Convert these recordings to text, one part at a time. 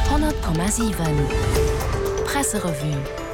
100,7 Presserevue.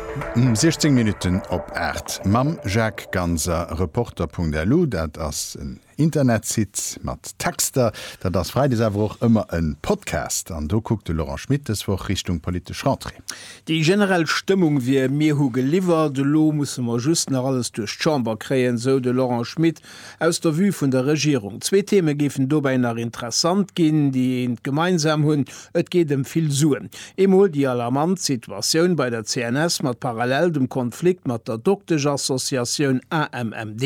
16 Minutten op 8 mam Jacques Ganser, Reporter.lu, dat ass en Internetsite mat Texter. Dat ass freides awer och ëmmer e Podcast an do kuckt de Laurent Schmit dës Woch Richtung politesch Rentrée. Déi generell Stëmmung wier, Mir hu geliwwert, elo musse mer just nach alles duerch d'Chamber kréien, sou de Laurent Schmit. Aus der Vue vun der Regierung, zwee Theme géifen dobäi nach interessant ginn, déi eent gemeinsam hunn, et geet ëm vill Suen. Emol déi alarmant Situatioun bei der CNS mat parallel dem Konflikt mat der Doktesch-Associatioun AMMD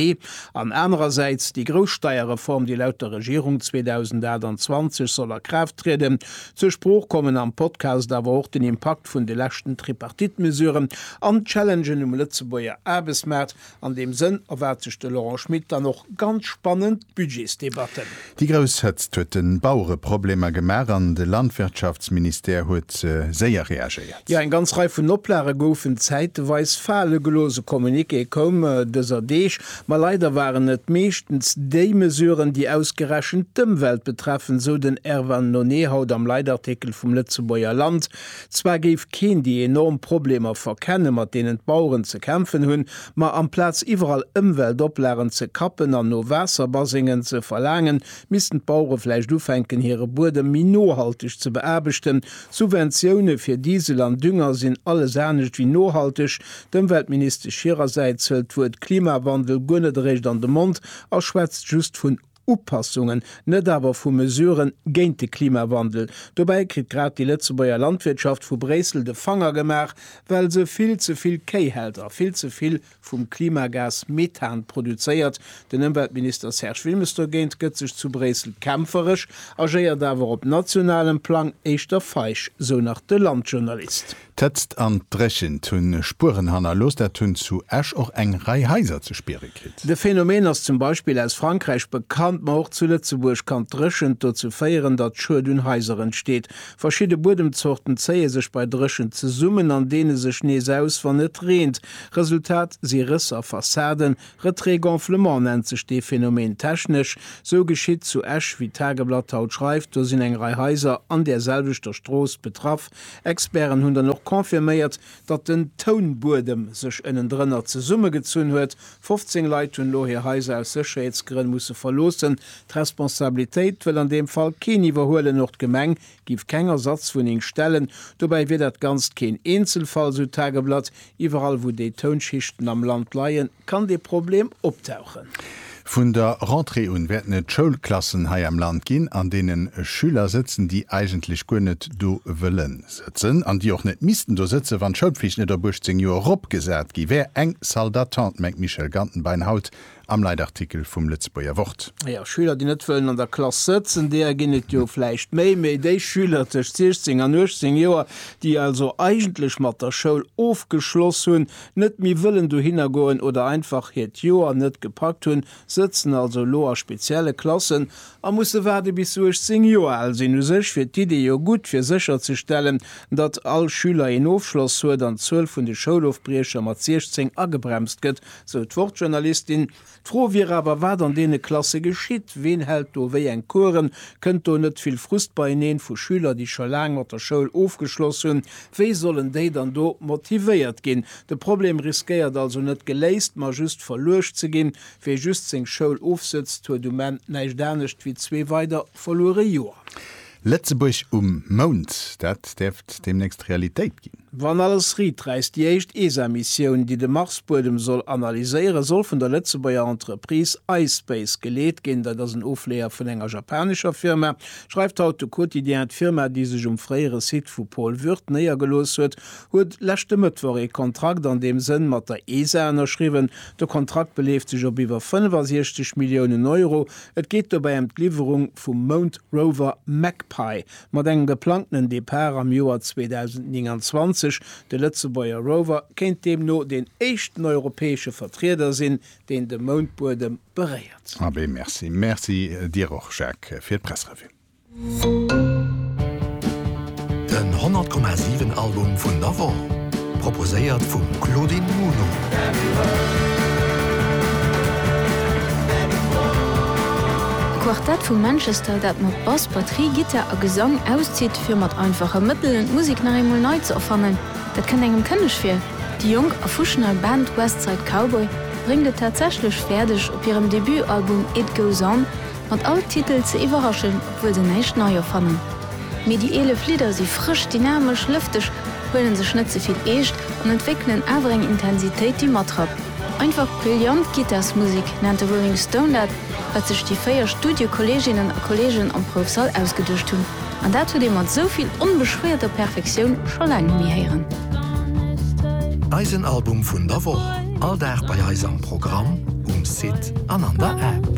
an anerersäits déi grouss Steierreform, déi laut der Regierung 2028 soll a Kraaft trieden. Zur Sprooch kommen am Podcast awer och den Impakt vun de leschten Tripartite-Mesuren an d'Challengen um Lëtzebuerger Aarbechtsmaart. An deem Sënn erwaart sech de Laurent Schmit dann och ganz spannend Budgetsdebatten. Déi grouss Hëtzt huet de Bauere Problemer gemaach an de Landwirtschaftsministère huet séier reagéiert. Jo, eng ganz Rei vun Oplage goufen zäiteweis fale gelooss. E Communiqué koum dëser Deeg, ma leider waren et meeschtens déi Mesuren, déi ausgerechent d'Ëmwelt betreffen, sou den Erwan Nonee haut am Leitartikel vum Lëtzebuerger Land. Zwar géif keen déi enorm Problemer verkennen, mat deenen d'Baueren ze kämpfen hunn, ma amplaz iwwerall Ëmweltoplagen ze kappen an no Waasserbasengen ze verlaangen, missten d'Bauere vläicht ufänken, hire Buedem méi nohalteg ze beaarbechten. Subventioune fir Diesel an Dünger sinn alles anescht wéi nohalteg. D'Ëmweltministesch hirersäits hëlt d'Wuert Klimawandel guer net eréischt an de Mond a schwätzt just vun. Upassungen, net awer vu Mesuren géint de Klimawandel. Dobäi kritt grad déi Lëtzebuerger Landwirtschaft vu Bréissel de Fanger gemaach, well se vill ze vill Kéi hält a vill ze vill vum Klimagas Methan produzéiert. Den Ëmweltminister Serge Wilmes dogéint gëtt sech zu Bréissel kämpferesch, agéiert awer op nationalem Plang éischter feig, sou nach de Landjournalist. D'Hëtzt an d'Dréchent hunn Spueren hannerlooss. Dat hunn zu Esch och eng Rei Haiser ze spiere kritt. De Phänomen ass zum Beispill aus Frankräich bekannt, ma och zu Lëtzebuerg kann d'Dréchent dozou féieren, datt Schued un Haiser entsteet. Verschidde Buedemzorten zéie sech bei Dréchent zesummen an deene sech nees aus, wann et reent. Resultat si Rëss a Fassaden. Retrait-gonflement nennt sech dee Phänomen technesch. Sou geschitt zu Esch, wéi d'Tageblatt haut schreift. Do sinn eng Rei Haiser an där selwechter Strooss betraff. Experten hunn dann och confirméiert, datt den Tounbuedem sech ënnendrënner zesummegezunn huet. 15 Leit hunn elo hir Haiser aus Sécherheetsgrënn musse verloossen. D'Responsabilitéit wëll an deem Fall keen iwwerhuelen. Och d'Gemeng géif keng Ersatzwunneng stellen. Dobäi wier dat Ganzt keen Eenzelfall, sou d'Tageblatt. Iwwerall, wou déi Tounschichten am Land leien, Kann dee Problem optauchen? Vun der Rentrée un wäerten et Schoulklassen hei am Land ginn, an deene Schüler sëtzen, déi eigentlech guer net do wëlle sëtzen an déi och net missten do sëtzen, wann d'Schoulpflicht net op 18 Joer eropgesat gi wär. Eng Salle d'attente, mengt d'Michèle Gantenbein haut am Leitartikel vum Lëtzebuerger Wort. Jo, Schüler, déi net wëllen an der Klass sëtzen, deeër ginn et jo vläicht méi. Mee déi Schüler tëscht 16 an 18 Joer, déi also eigentlech mat der Schoul ofgeschloss hunn, net méi wëllen dohinner goen oder einfach hiert Joer net gepackt hunn, sëtzen also elo a spezielle Klassen a musse waarde bis se 18 Joer al sinn. U sech wier d'Idee jo gutt, fir sécher ze stellen, datt all Schüler een Ofschloss huet an d'Zuel vun de Schoulofbriecher mat 16 agebremst gëtt, sou d'Wortjournalistin. D'Fro wier awer, wat an deene Klasse geschitt. Ween hält do wéi eng Coursen? Kënnt do net vill Frust beieneen vu Schüler, déi scho laang mat der Schoul ofgeschloss hunn? Wéi sollen déi dann do motivéiert ginn? De Problem riskéiert also net geléist, ma just verluecht ze ginn. Wee just seng Schoul ofsëtzt, huet um Enn näischt anescht wéi zwee weider verluere Joer. Lëtzebuerg um Mound, dat däerft deemnächst Realitéit ginn. Wann alles riit räisst, déi éischt ESA-Missioun, déi de Marsbuedem soll analyséieren, soll vun der Lëtzebuerger Entreprise ispace geleet ginn. Dat ass en Ofleeër vun enger japanescher Firma, schreift haut de Quotidien. D'Firma, déi sech um fréiere Site vu Pol Würth néiergelooss huet, huet leschte Mëttwoch ee Kontrakt an deem Sënn mat der ESA ënnerschriwwen. De Kontrakt beleeft sech op iwwer 65 Milliounen Euro Et geet dobäi ëm d'Liwwerung vum Mound Rover Magpie. Mat engem geplangtenen Depart am Joer 2029, de Lëtzebuerger Rover kéint deemno deen éischten europäesche Vertrieder sinn, deen de Moundbuedem beréiert. Abee, merci. Merci dir och, Jacques, fir d'Pressrevue. Den 100,7 Album vun der Woch, proposéiert vum Claudine Muno. E Quartett vu Manchester, dat mat Bass, Batterie, Gittar a Gesang auszitt, fir mat einfache Mëttelen d'Musek nach eemol nei ze erfannen, dat kënnt engem kënneg vir. Déi jonk a fuschnei Band West Side Cowboy bréngt et tatsächlech fäerdeg, op hirem Debutalbum It Goes On, Mat all Titel ze iwwerraschen, obwuel se näischt nei erfannen. Mee déi 11 Lidder si frësch, dynamesch, lëfteg, huelen sech net ze vill eescht an entwéckelen awer eng Intensitéit, déi matrappt. Einfach brillant Gittarsmusek nennt de Rolling Stone dat, wat sech déi véier Studiokolleeginnen a kolleegen am Proufsall ausgeduecht hunn. An dat huet ee mat esou vill onbeschwéierter Perfektioun scho laang net méi héieren. Eisen Album vun der Woch, all Dag bei eis am Programm, um Site an an der App.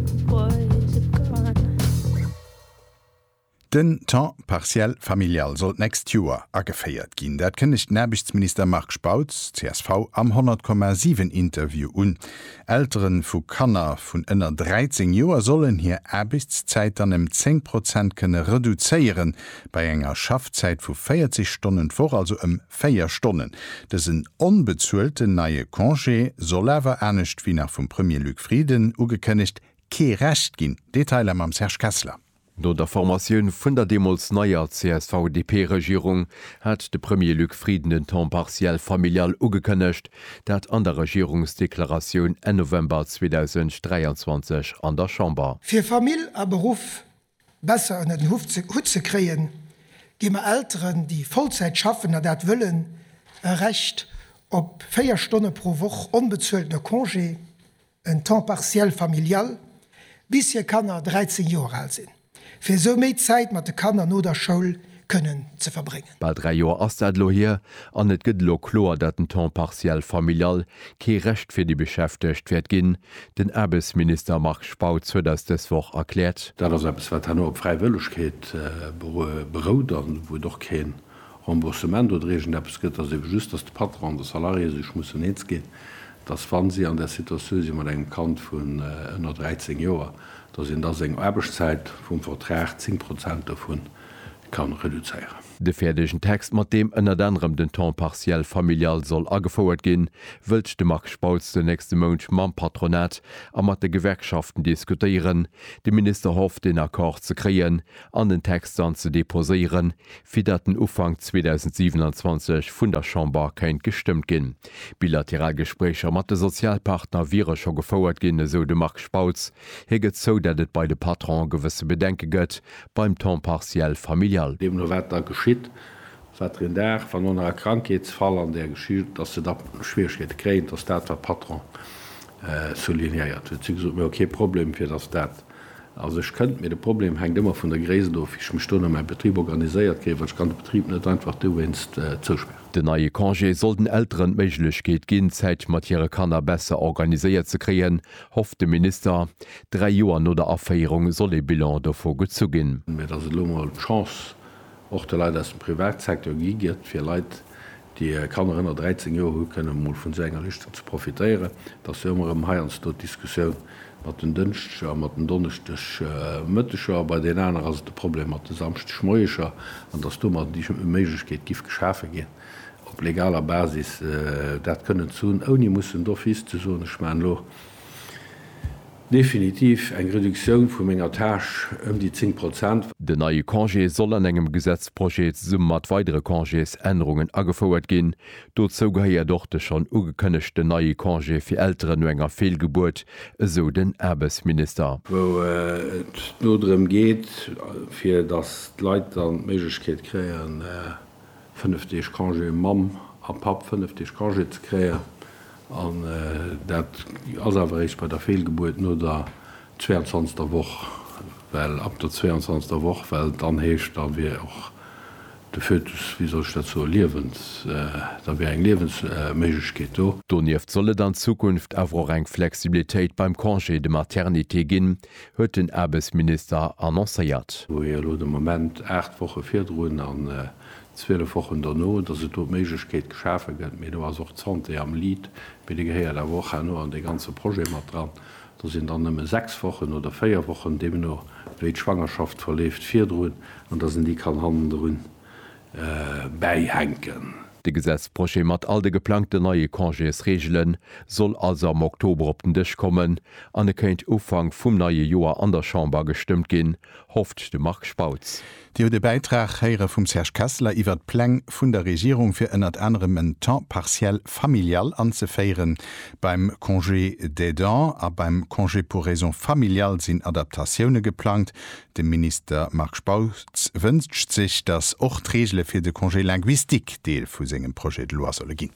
Den Temps partiel familial soll d'nächst Joer ageféiert ginn. Dat kënnegt den Aarbechtsminister Marc Spautz, csv, am 100,7 Interview un. Eltere vu Kanner vun ënner 13 Joer sollen hir Aarbechtszäit dann ëm 10 Prozent kënne reduzéieren, bei enger Schaffzäit vu 40 Stonnen d'Woch also ëm 4 Stonnen. Dësen onbezuelten neie Congé soll awer, anescht wéi nach vum Premier Luc Frieden ugekënnegt, kee Recht ginn. Detailer mam Serge Kessler. No der Formatioun vun der deemools neier CSV-DP-Regierung hat de Premier Luc Frieden den Temps partiel familial ugekënnegt, dat an der Regierungsdeklaratioun Enn November 2023 an der Chamber. Fir Famill a Beruff besser ënner den Hutt ze kréien, gi mer Elteren, déi Vollzäit schaffen a dat wëllen, e Recht op 4 Stonne pro Woch onbezueltene Congé, en temps partiel familial, bis hir Kanner 13 Joer al sinn, fir esou méi Zäit mat de Kanner no der Schoul kënnen ze verbréngen. Bal dräi Joer ass dat elo hier, an et gëtt elo kloer, datt den temps partiel familial kee Recht fir déi Beschäftegt wäert ginn. Den Aarbechtsminister Marc Spautz huet eis dës Woch erkläert, Dat ass eppes, wat herno op Fräiwëllegkeet berout, an wou et och kee Remboursement oder iergend eppes gëtt, ass ebe just, dass de Patron an de Salarié sech mussen eens ginn, dass, wa si an där Situatioun si mat engem Kand vun ënner 13 Joer, dass een da seng Aarbechtszäit vum Vertrag 10 Prozent dovu kann reduzéieren. De fäerdegen Text, mat deem ënnert anerem den Temps partiel familial soll agefouert ginn, wëllt de Marc Spautz den nächste Mount mam Patronat a mat de Gewerkschaften diskutéieren. De Minister hofft, een Accord ze kréien, an den Text dann ze deposéieren, fir datt en Ufank 2027 vun der Chamber kéint gestëmmt ginn. Bilateral Gespréicher mat de Sozialpartner wiere scho gefouert ginn, esou de Marc Spautz. Hie gëtt zou, datt et bei de Patronen gewësse Bedenke gëtt beim Temps partiel familial. Deemno wat da geschitt, wat der een Dag, wann no nach e Krankheetsfall an där Geschicht, datt se da Schwieregkeete kréien, datt dat wat d'Patronen soulignéiert hunn. Si hu gesot, mir hu kee Problem, fir datt dat Also ech kënnt mir, de Problem hänkt ëmmer vun der Gréisst of, wéi ech mech do no mäi Betrib organiséiert kréien, well ech kann de Betrib net einfach dowéinst zouspären. Den neie Congé soll den Elteren d'Méiglechkeet ginn, d'Zäit mat hire Kanner besser organiséiert ze kréien, hofft de Minister. Dräi Joer no der Aféierung soll ee Bilan dovu gezu ginn. Mä datt et elo emol d'Chance och de Leit aus dem Privatsecteur gi gëtt, fir Leit, Déi Kanner ënner 13 Joer hu kënnen emol vun esou enger Lëschten ze profitéieren, dass se ëmmer erëm heiansdo d'Diskussioun mat den Dënschdeger a mat den Donneschdegmëtteger, a bei den aner ass et de Problem mat de Samschdegmoieger, an dass domat déi Méiglechkeet giff geschafe ginn, op legaler Basis dat kënnen ze hunn, ouni mussen d'office ze soen, ech maachen elo. Definitiv eng Reduktioun vu menger Tâche ëm déi 10 Prozent. Den neie Congé soll an engem Gesetzprojet zesumme mat weidere Congésännerungen agefouert ginn. Dozou gehéiert och de schonn ugekënnegten neie Congé fir Elteren no enger Feelgebuert, esou den Aarbechtsminister. wou et no drëm geet, fir datt d'Leit dann d'Méiglechkeet kréien, fënnef Deeg Congé, um Mamm a Papp fënnef Deeg Congé ze kréien. An dat ass awer eréischt bei der Feelgebuert no der 22. Woch, well ab der 22. Woch, well et dann heescht, da wier och de Fötus, wéi soll ech dat soen, liewens-, da wier eng Liewensméiglechkeet do. Donieft soll et an Zukunft awer och eng Flexibilitéit beim Congé de maternité ginn, huet den Aarbechtsminister annoncéiert. Wou ee elo de Moment 8 Woche virdrun an 12 Wochen dono, dass et do d'Méiglechkeet geschafe gëtt, mee do ass och d'Santé am Lead, mee déi gehéiert awer och herno an dee ganze Projet mat dran, do sinn dann nëmme 6 Wochen oder 4 Wochen, deemno wéi d'Schwangerschaft verleeft, virdrun, an dass een déi kann hannendrun bäihänken. De Gesetzprojet mat all de geplangten neie Congésreegele soll also am Oktober op den Dësch kommen an e kéint Ufank vum neie Joer an der Chamber gestëmmt ginn, hofft de Marc Spautz. Dir hutt e Bäitrag héiere vum Serge Kessler iwwert d'Pläng vun der Regierung, fir ënnert anerem en Temps partiel familial anzeféiere. Beim Congé d'aidant a beim Congé pour raisons familiales sinn Adaptatioune geplangt. De Minister Marc Spautz wënscht sech, datt och d'Reegele fir de Congé linguistique Deel vu sengem Projet de loi solle ginn.